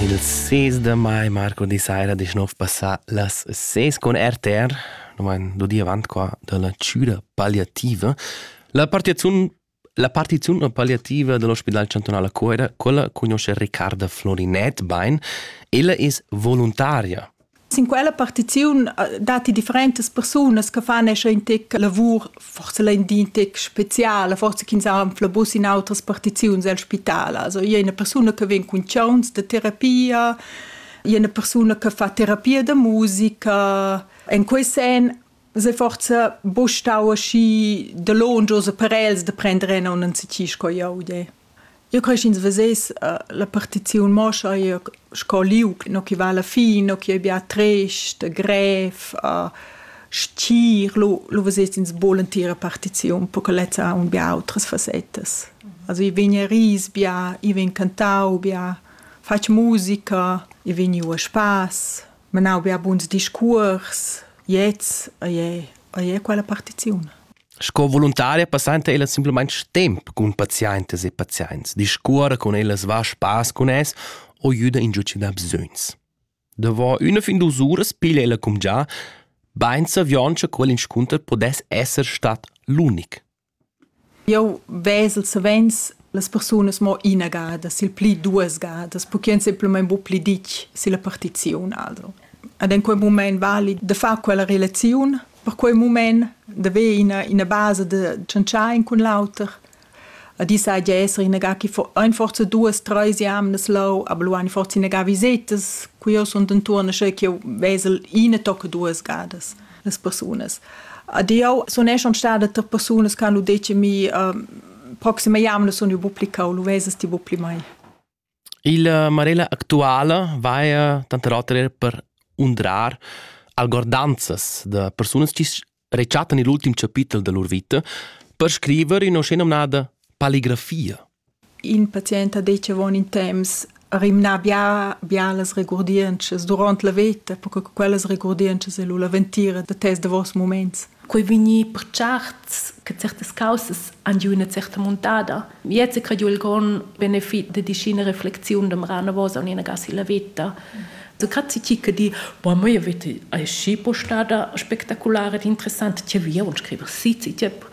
Ils sis da mai, Marco di saira, disch nov passà las ses con RTR, no vain do di avant qua da la chüra palliativa. La partiziun la partiziun palliativa dell'ospedal chantunale a Cuera, quella conosce Riccarda Florinet bein. Ella es voluntaria Sin quella partiziun datti differentas persunas che fan in tec lavur, forse l'endin tec speziale, forse ch'ins ha un flabus in autras partiziuns al spital. Also io una persona che vien cun chauns de terapia, io una persona che fa terapia da musica. In quei sen Se forza bu stau aschi da longius per els da prender en un anzici sco jau de. Io cresch ins veses la partiziun mo scha io sco liug no chi va alla fin, no chi ei bia trist, grev, stgir, lu lu veses ins bu l'entira partiziun, per che lezza ha aunc bia outras fassettas. Also i vegn a ris bia, i vegn cantau bia, fatg musica, i vegn iu a spass. menau bia buns discuors, gliez ei, ei quella partiziun. Sco voluntaria passanta ella simplamain temp cun pazientas e pazients, discuora con ellas va spass con es o juda in giuci da bsögns. Davor üna fin dus uras piglia ella cum già, bein savioncha quell inscunter podess esser stat l'unic. Jeu vesel savens las persunas mo ina gada, sil pli duas gadas, perché ein semplamein buca pli ditg silla partiziun alro. Ed en quei mument vali da far quella relaziun per quei mument, d'haver ina, ina basa da tschantschar in cun l'auter. Ed i sai gia esser ina ga che fo- ein forsa duas, treis jamnas leu, aber lu ein forsa ina ga visetas, cu jeu sun dentuorn, sche ch'jeu vesel ina tocca duas gadas. las persunas. Ad eu sun eschan stada tar persunas che hanno detto mi uh, proxime jamne sun io publica o lu vesas ti pli mai. Il uh, Marella actuala vaia tanter oter er per undrar algordanzas da persunas che rechattan il ultim chapitel da lur vita per scriver in oscena nada paligrafia. In patient ha detg avon in temps rimnà bia bia las regurdientschas duront la veta, perche che quellas regurdientschas ei lu la ventira da tes davos muments. Quei vegnir per certs che certas caussas han giu ina certa muntada. Gliez ha crediu il grond benefit da dischina reflexiun demora anavos aunc silla veta. So grazie ti che di, boah, mia vita ei schi postada spektakulare ed interessante, ti via und scriver si, ti tiep.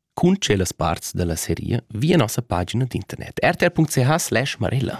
Cun tschellas parts da la seria via nossa pagina d'internet rtr.ch slash marella.